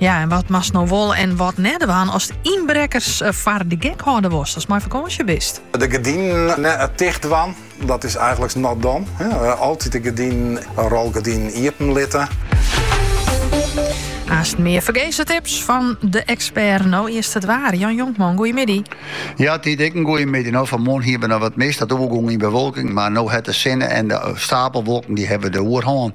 Ja, en wat moatst no wol en wat net dwaan ast ynbrekkers eh, foar de gek hâlde wolst als mei fakânsje bist? De gerdinen net eh, tichtdwaan, dat is eigenlik not done. Eh, altyd de gerdinen, in rolgerdyn iepen litte. Aanst mear fergeze tips fan de ekspert. No earst it waar. Jan Jonkman, goeiemiddei. Ja, dy ek in goeiemiddei. No, fan 'e moarn hiene we noch wat mist. Dat oergong yn bewolking. Mar no hat de sinne en de eh, steapelwolken dy hawwe de oerhân.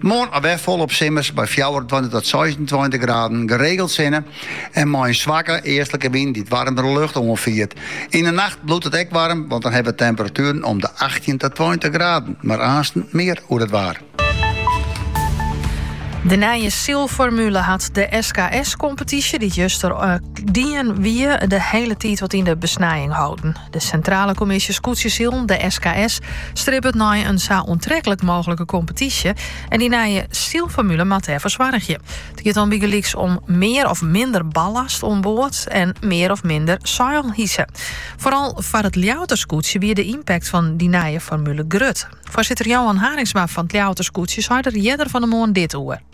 Moarn alwer folop simmers by fjouwerentweintich tot seisentweintich graden geregeld sinne en mei in swakke eastlike wyn dy't waarmere lucht oanfiert. Yn 'e nacht bliuwt it ek waarm, want dan hawwe we temperatueren om de achttjin oant tweintich graden. Mar aansens mear oer it waar. De nije sylformule hat de SKS-kompetysje, dy't juster dien wie, de hiele tiid wat yn de besnijing holden. De Sintrale Kommisje Skûtsjesilen, de SKS, stribbet nei in sa oantreklik mooglike kompetysje en dy nije sylformule moat dêrfoar soargje. It giet dan bygelyks om mear of minder ballast oan board en mear of minder seil hise. Foaral foar it Ljouwerter skûtsje wie de ympakt fan dy nije formule grut. Foarsitter Johan Haringsma fan it Ljouwerter skûtsje sei der earder fan de moarn dit oer.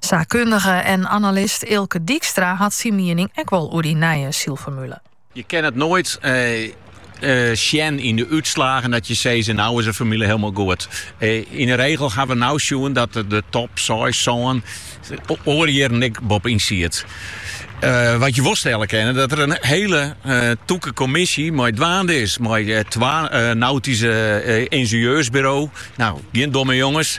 Saakkundige en analist Eelke Dykstra hat syn miening ek wol oer dy nije sylformule. Je kin it noait sjen yn de útslagen dat je sizze, no is de formule hielendal goed. Yn de regel ha we no sjoen dat de top seis, sân oare jierren ek boppe-yn siet. Wat je wol stelle kinne dat der in hiele tûke kommisje mei dwaande is mei twa nautyske yngenieursburo's, no gjin domme jonges,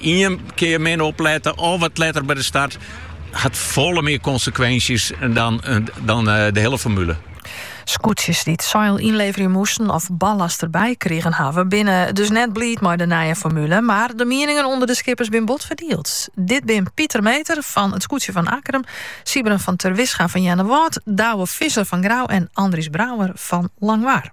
Ien kear min oplette of wat letter by de start hat folle mear konsekwinsjes dan de hiele formule. Skûtsjes dy't seil ynleverje moasten of ballast derby krigen hawwe, binne dus net bliid mei de nije formule. Mar de mieningen ûnder de skippers binne bot ferdield. Dit binne Pieter Meeter fan it skûtsje fan Akkrum, Sijbren van Terwisga fan Earnewâld, Douwe Visser fan Grou en Andries Brouwer fan Langwar.